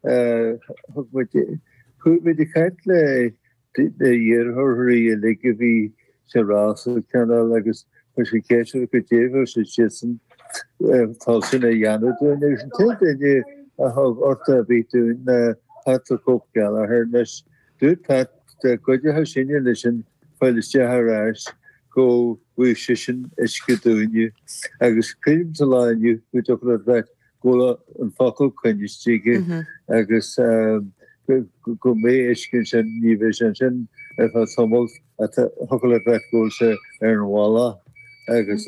Thug muid chuaigh muid ag caint leis na hiarrthóirí uilig a bhí sa rás cineál agus chuir muid ceist orthu goidé a bhí siadsan toilteanach a dhéanamh dúinn agus an t-aon duine a thug tacaíocht ar bith dúinn ná Pat the Cope Gallagher anois. Dúirt Pat dá gcuideochadh sinne leisean fáil isteach ar ais go bhfaigheadh seisean uisce dúinne agus creidim sa lá inniu nach dtiocfadh leat bheith Tá an focal coinnithe aige agus go mbeidh uisce ansin, ní bheidh sé ansin ar feadh tamaill. Thiocfadh leat bheith ag gabháil suas ar an bhealach agus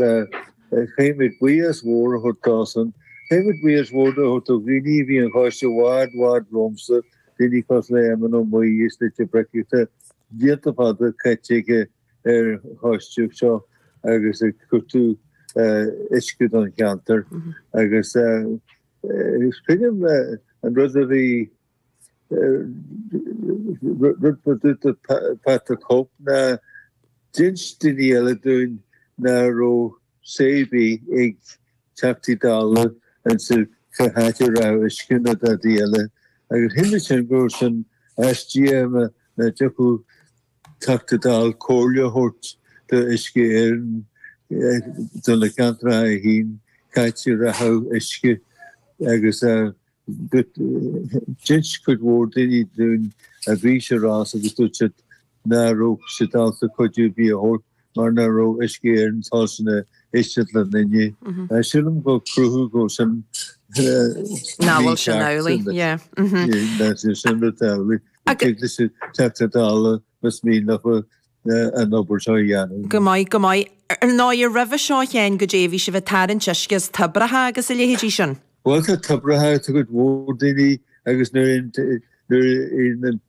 caithfidh muid buíochas mór a thabhairt dósan. Caithfidh muid buíochas mór a thabhairt do dhaoine a bhí ar an choiste i bhfad, bhfad romhamsa, daoine cosúil le Éamonn Ó Muirí is Louis Mac Eachaidh, tá blianta fada caite aige, ar an choistíocht seo agus ag cuartú uisce don cheantar agus is cuimhin liom an rud a bhí rud maith dúirt Pat the Cope ná d'inst daoine eile dúinn ná raibh say ar bith ag Teachtaí Dála ins an cá háit a rachadh uisce nó dadaí eile agus shíl mé sin go raibh sin aisteach nach dtiocfadh Teachta Dála comhairle a thabhairt d'Uisce Éireann do na ceantracha a fá cá háit a rachadh uisce agus d'inis cuid mhór daoine dúinn a bhí sa rás agus dúirt siad ná raibh siad ábalta cuidiú ar bith a thabhairt. mar ná raibh uisce Éireann toilteanach éisteacht leo inniu. Silim gur cruthú go bhfuil sin Ná bhfuil sin amhlaidh, yeah. Ná bhfuil sin rud amhlaidh. Tig leis an Teachta Dála más mian leo an obair seo a dhéanamh. Go maith, go maith. Ar ndóigh, roimhe seo féin goidé, bhí sibh ag tarraingt uisce as toibreacha agus a leithéidí sin. Bhuel, tá toibreacha ag cuid mhór daoine agus nuair a théann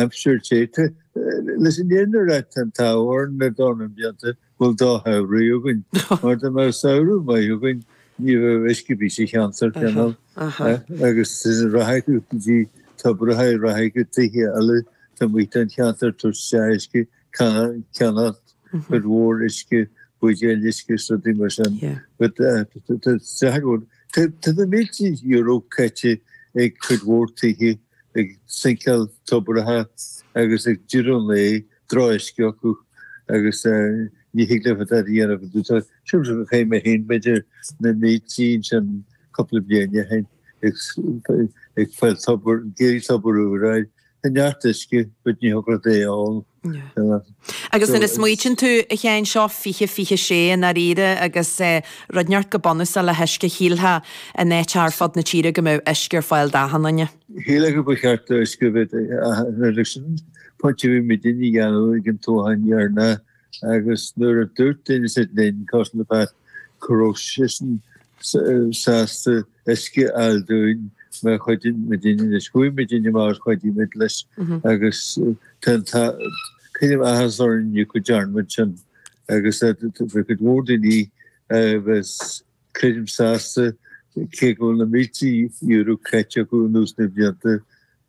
aimsir te. Leis an fhírinne a rá tá an t-ádh orainn le dornán blianta go bhfuil drochshamhraidh againn, mar dá mbeadh samhradh maith againn ní bheadh uisce ar bith sa cheantar, cineál. Agus sin ag rith go dtí tobracha, ag rith chuig tithe eile, tá muintir an cheantair tuirseach de uisce. ag ceannacht cuid mhór uisce, buidéil uisce is rudaí mar sin. Tá na mílte euro caite ag cuid mhór tithe ag sinceáil tobartha agus ag déanamh láimh de drochuisce acu agus ní thig leo dadaí a dhéanamh go dtí seo. Sin rud a chaith mé féin b'fhéidir na mílte ansin cúpla bliain ó shin ag fáil tobar, ag iarraidh tobar úr a fháil. Tá neart uisce go dtí an Ghrafaidh ann. Agus nuair a smaoitíonn tú, a Sheáin, seo fiche fiche sé i ndáiríre agus rud inteacht chomh bunúsach le huisce, shílfeá in áiteacha ar fud na tíre go mbeadh uisce ar fáil d'achan duine. Shílfeá go mba cheart do uisce a bheith ag achan duine sin an pointe a bhí muidinne a dhéanamh ag an toghchán deireanach agus nuair a dúirt duine ansin linn, cosúil le Pat, go raibh seisean sásta, uisce a fháil dúinn má chuidíonn muidinne agus chuaigh muidinne agus chuidigh muid leis agus tá tá creidim áthas orainn inniu go dearn muid sin agus tá cuid mhór daoine anois creidim sásta cé go bhfuil na mílte euro caite acu anuas na blianta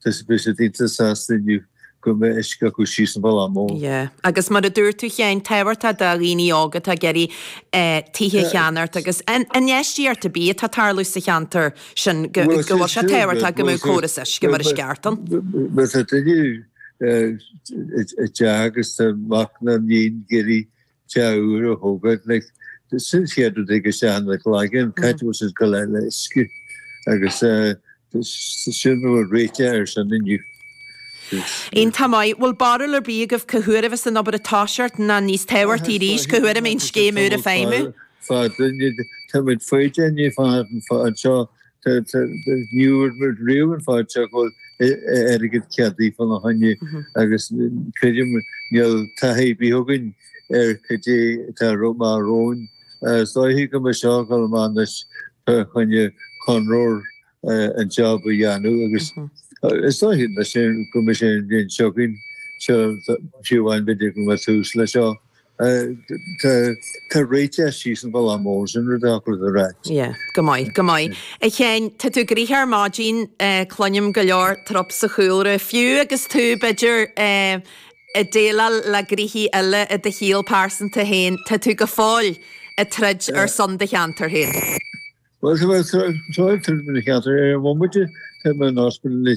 Tá daoine sásta inniu go mbeidh uisce acu síos an Bhaile Mór. Yeah. Agus mar a dúirt tú a Sheáin, tábhachtach do dhaoine óga atá ag iarraidh tithe a cheannacht agus infheistíocht ar bith atá ag tarlú sa cheantar sin go bhfuil sé tábhachtach go mbeidh córas uisce mar is ceart ann. Má tá duine i dteach agus tá mac ná iníon ag iarraidh Teach úr a thógáil, like, sin an chéad rud a thig isteach in do chloigeann, cad é an scéal le le uisce agus sin a bhfuil réiteach ar sin inniu. Iontach maith, bhfuil barúil ar bith agaibh cá huair a bheas an obair ag toiseacht ná níos tábhachtaí arís, cá huair a mbeidh an scéim úr ag feidhmiú? Bhuel, tá muid foighdeach, ag feitheamh anseo Ní raibh muid riamh an fad seo go bhfuil airgead ceadaithe fána choinne agus creidim níl taithí ar bith againn ar cad é atá amach romhainn. Is dóiche go mbeidh seo ag gabháil amach anois fá choinne conraitheoir an job a dhéanamh agus is dóiche go mbeidh sé an bhliain seo chugainn, seo fiú amháin b'fhéidir go mbeidh tús le seo. Tá réiteach síos an Bhaile Mór sin roimh an aclaí do raic. Yeah. Go maith, go maith. A Sheáin, tá tú gnoitheach ar maidin, cluinim go leor trup sa chúlra, fiú agus tú, b'fhéidir, ag déileáil le gnoithí eile i do shaol pearsanta féin, tá tú go fóill ag troid ar son do cheantar féin. Bhuel, tá mé ag troid ar son mo cheantar. Ar an bhomaite, tá mé in ospidéal anois.